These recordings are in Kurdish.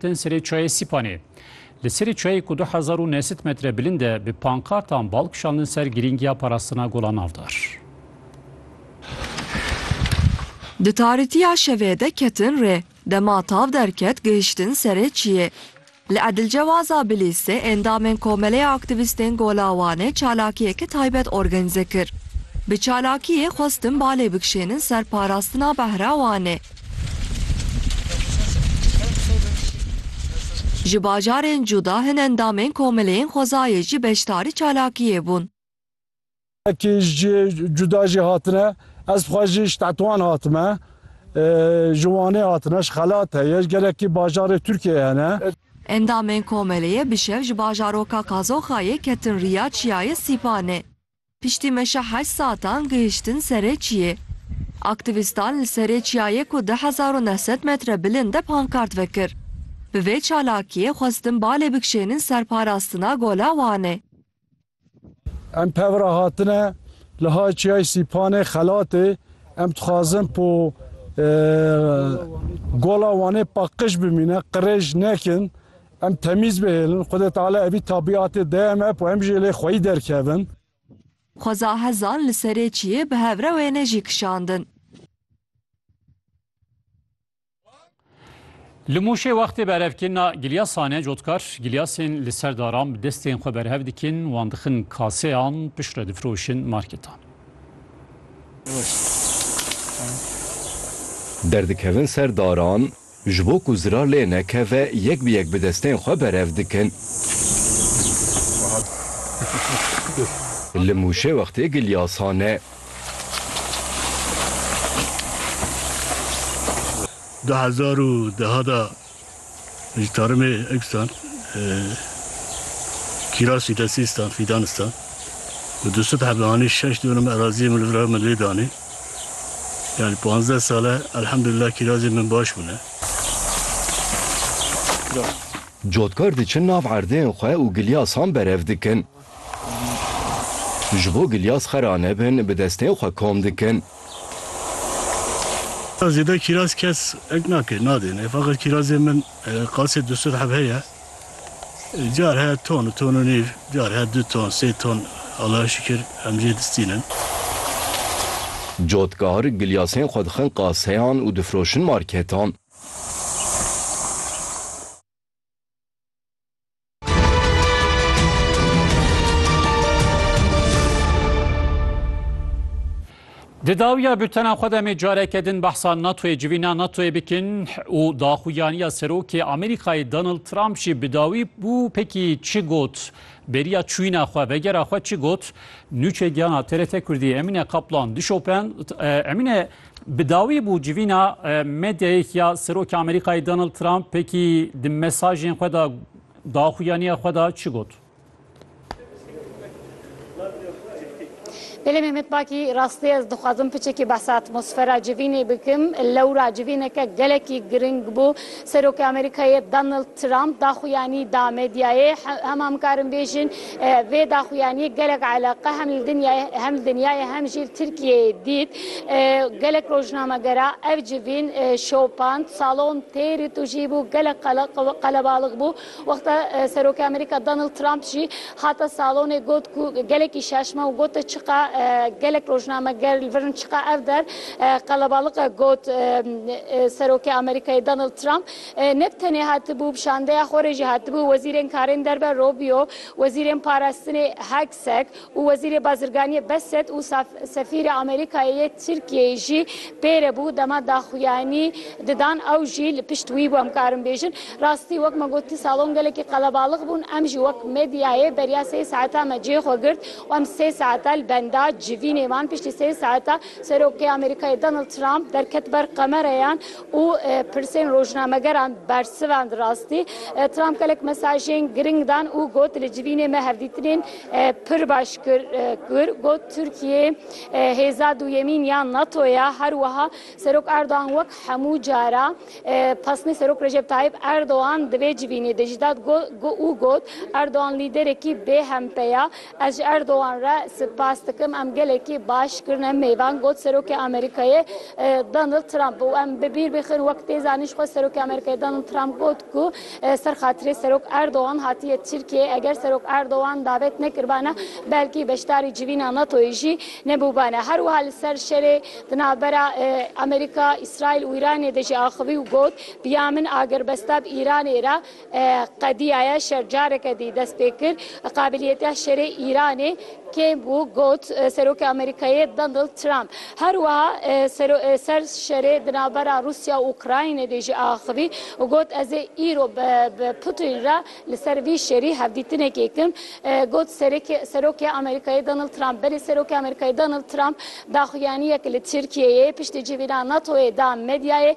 Tên serê çayê Sîpanê. Li serê çayê ku du hezar û neh sed metre bilind e bi pankartan bal kişandin ser girîngiya parastina gola navdar. Di tarîtiya şevê de ketin rê. Dema tav derket gihiştin serê çiyê. Li Edilcewaza Bilîsê endamên Komeleya Aktîvîstên Gola Wanê çalakiyeke taybet orgenize kir. Bi çalakiyê xwestin balê bikişênin ser parastina behra Wanê. Ji bajarên cuda hin endamên komeleyên xwezayê jî beşdarî çalakiyê bûn. Wekî ji cihê cuda jî hatine, ez xwe jî ji Tetwan hatime. Ji Wanê hatine, ji Xelat heye, ji gelekî bajarê Tirkiyeyê hene. Endamên komeleyê bi şev ji bajaroka Kazoxayê ketin riya çiyayê Sîpanê. Piştî meşa heşt saetan gihiştin serê çiyê. Aktîvîstan li serê çiyayê ku du hezar û neh sed metre bilind e pankart vekir. Bi vê çalakiyê xwestin balê bikişênin ser parastina gola Wanê. Em pev re hatine li hay çiyayê Sîpanê xelatê. Em dixwazin ku gola Wanê paqij bimîne, qirêj nekin. Em temîz bihêlin, Xwedê Teala evî tabîatê de em ep û em jî lê xweyî derkevin. Xweza hezan li serê çiyê bi hev re wêne jî kişandin. Li Mûşê wextê berevkirina giliya sane cotkar giliyasên li ser daran bi destên xwe berhev dikin, wan dixin kaseyan piştre difiroşin marketan. Derdikevin ser daran Ji bo ku zirar lê nekeve yek bi yek bi destên xwe berev dikin. Li Mûşê wextê gilya sane. Du hezar û duha de ji tarmê Eksan, Kîrasî, Desîstan, Fîdanistan û Dusithe bi anî şeş dûnim eraziyê min li vir e min lê danî. Yanî panzdeh sal e elhemdulillah kîrazên min baş bûne. Cotkar diçin nav erdeyên xwe û gilyasan berev dikin. Ji bo gilyas xera nebin bi destên xwe kom dikin. Zêde kîraz kes nake nadêne. Feqet kîrazên min. Qasê du sed heb heye. Car heye ton, ton û nîv, car heye du ton, sê ton. Allahê şikir em jê distînin. Cotkar, gilyasên xwe dixin qaseyan û difiroşin marketan. Di dawiya bültena xwe demê careke din behsa NATOyê civîna NATOyê bikin û daxuyaniya serokê Amerîkayê Donald Trump jî bi dawî bû pekî çi got beriya çûyîna xwe vegera xwe çi got nûçe giyana TRT Kurdî Emîne Kaplan dişopend Emîne Bi dawî bû civîna medyayek ya Serokê Amerîkayê Donald Trump pekî di mesajên xwe de daxuyaniya xwe de çi got? Belê Mehmet Bakî, rastî ez dixwazim piçekî behsa atmosfera civînê bikim. Lewra civîneke gelekî giring bû. Serokê Amerîkayê Donald Trump daxuyanî da medyayê, hema mikarin bêjin vê daxuyaniyê gelek eleqe hem li dinyayê hem li dinyayê hem jî li Tirkiyeyê dît. Gelek rojnamegera ev civîn şopand, salon têrî tujî bû, gelek qelebalix bû. Wexta Serokê Amerîka Donald Trump jî hate salonê got ku gelekî şaş ma û gote çiqa gelek rojnameger li vir in çiqa ev der qelebalix e got Serokê Amerîkayê Donald Trump. Neb tenê hatibû, bi şandeya xwe re jî hatibû Wezîrên Karên Derve Rubio, Wezîrên Parastinê Hegseth û Wezîrê Bazirganiyê Bassett û Sefîrê Amerîkayê yê Tirkiyeyê jî pê re bû. Dema daxuyanî didan ew jî li pişt wî bû. Em karin bêjin rastî wek me got salon gelekî qelebalix bûn. Em jî wek medyayê beriya sê saeta me cihê xwe girt û em sê saeta li benda civînê man. Piştî sê saeta Serokê Amerîkayê Donald Trump derket ber qemereyan û pirsên rojnamegeran bersivand rastî. Trump gelek mesajên giring dan û got li civînê me hevdîtinên pir baş kir. Got Tirkiye hêza duyemîn ya NATO ye. Her wiha Serok Erdogan wek hemû cara pesnê Serok Recep Tayyip Erdogan di vê civînê de jî dat û got Erdogan lîderekî bêhempe ye. Ez ji Erdogan re spas dikim, em gelekî baş kirine mêvan, got Serokê Amerîkayê Donald Trump û em bi bîr bixin wek tê zanîn ji xwe Serokê Amerîkayê Donald Trump got ku ser xatirê Serok Erdogan hatiye Tirkiyeyê, eger Serok Erdogan davet nekiribane belkî beşdarî civîna NATOyê jî nebûbane. Her wiha li ser şerê di navbera Amerîka, Îsraîl û Îranê de jî axivî û got, Biya min agirbesta bi Îranê re Qediya Yaşar careke dî dest pê kir. Qabiliyeta şerê Îranê kêm bû, got Serokê Amerîkayê Donald Trump. Her wiha ser şerê di navbera Rûsya û Ukraynê de jî axivî û got ez ê îro bi Putin re li ser vî şerî hevdîtinekê kim. Got Serokê Amerîkayê Donald Trump. Belê Serokê Amerîkayê Donald Trump daxuyaniyek li Tirkiyeyê piştî civîna NATO'yê da medyayê.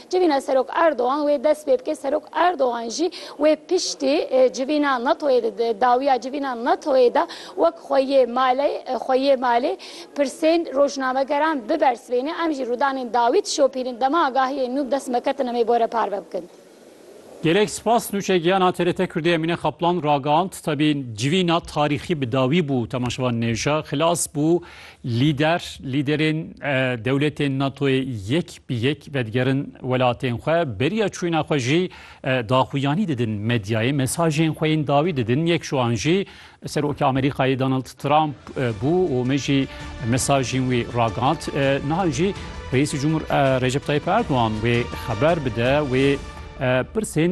Civîna Serok Erdogan wê dest pê bike. Serok Erdogan jî wê piştî civîna NATO'yê di dawiya civîna NATO'yê de wek xwe yê malê xwe yê malê pirsên rojnamegeran bibersivêne. Em jî rûdanên dawî dişopînin. Dema agahiyên nû bi dest me ketine me bore parve bikin. Gelek spas nûçe giyana TRT Kurdî Emîne Kaplan ragihand tevî civîna tarîxî bi dawî bû temaşevan nêja xilas bû Lîder, Lîderên dewletên NATO'yê yek bi yek vedigerin welatên xwe, beriya çûna xwe jî daxuyanî didin medyayê, mesajên xwe yên dawî didin, yek ji wan jî Serokê Amerîkayê Donald Trump bû û me jî mesajên wî ragihand. Niha jî Reîsî Cumhur Recep Tayyip Erdogan wê xeber bide, wê pirsên